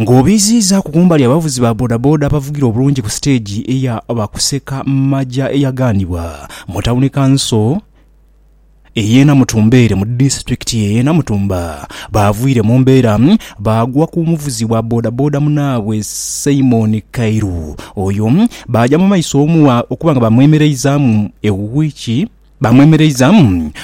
Ng'obiiziizaaku kumbali abavuzi ba bodaboda abavugira obulungi ku siteegi eya Bakuseka Maja eyagaanibwa mu tawuni kanso ey'e Namutumbeere mu disitulikiti y'e Namutumba baavwire mu mbeera baagwa ku muvuzi wa bodaboda munaabwe Simon Kairu. Oyo baaja mu maiso okuba nga baamwemereizaamu e wiiki Baamwemereiza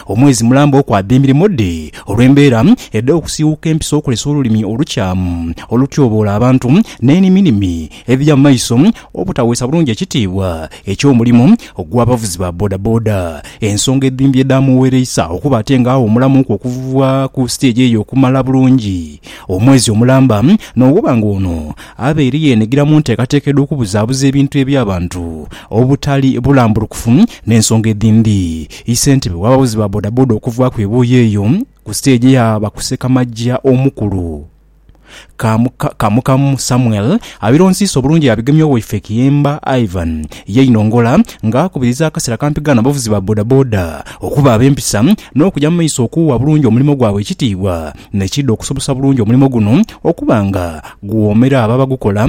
omwezi mulamba okwada emirimo dhe olw'embeera edh'okusiiwuuka empisa okulesa olulimi olukyamu olutyoboola abantu n'eniminimi edhiri amaiso obutaweesa bulungi ekitiibwa eky'omulimo gw'abavuzi ba bodaboda ensonga edhimbye edhaamughereisa okuba ate nga awumulamuuku okuva ku siteegi eyo okumala bulungi omwezi omulamba n'okuba nga ono abaire yeenhigira mu nteekateeka edh'okubuzaabuza ebintu eby'abantu obutali bulambulukufu N'ensonga edhindi, isentebe w'abavuzi ba bodaboda okuvaaku ebuuyi eyo ku siteegi yaaba ku ssekamaja omukulu, Kamu, Kamukamu Samuel abironsiisa obulungi yaabigemya owaife Kiyemba Ivan yeinongola nga akubiriza akasera akampigaano abavuzi ba bodaboda okuba ab'empisa n'okuja mu maiso okuuwa bulungi omulimo gwabwe ekitiibwa nekiidha okusobosa bulungi omulimo guno okuba nga guwoomera abo abagukola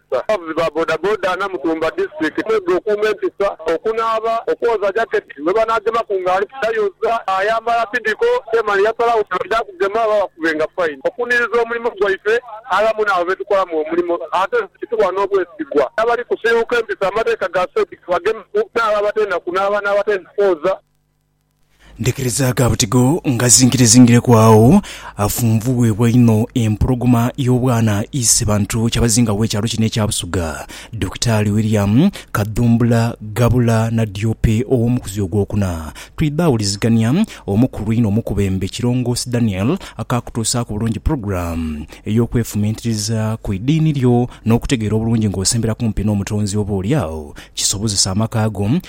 Abavuzi ba bodaboda Namutumba District mwega okuuma empisa, okunaaba, okwoza jaketi gwe banaagemaku nga ali kutayoza, ayambala tidiko te male yasalagho nga baidha kugema babakubenga fine. Okuniriza omulimo gwaife aghamu n'abo be tukolamu omulimo ate nze kituwa n'obwesigwa n'abali kusiiwuuka empisa amateeka ga saidi ke bagemeku n'abo abatenda kunaaba n'abatenda kwoza. Ndhikiriza ga butigo ngazingirezingireku agho afunvubwebwa inho empologoma y'obwana Isebantu Kyabazinga w'ekyalo kino ekya Busoga, Dokitaali William Kadhumbula Ghabula Nadiope ow'omukuzi ogwokuna. Twidha wulizigania omukulu inho omukubembe Kilongoosi Daniel akaakutuusaaku bulungi pulogulaamu ey'okwefumiitiriza ku idiini lyo n'okutegeera obulungi ng'osembera kumpi n'Omutonzi oba olyagho kisobozese amaka go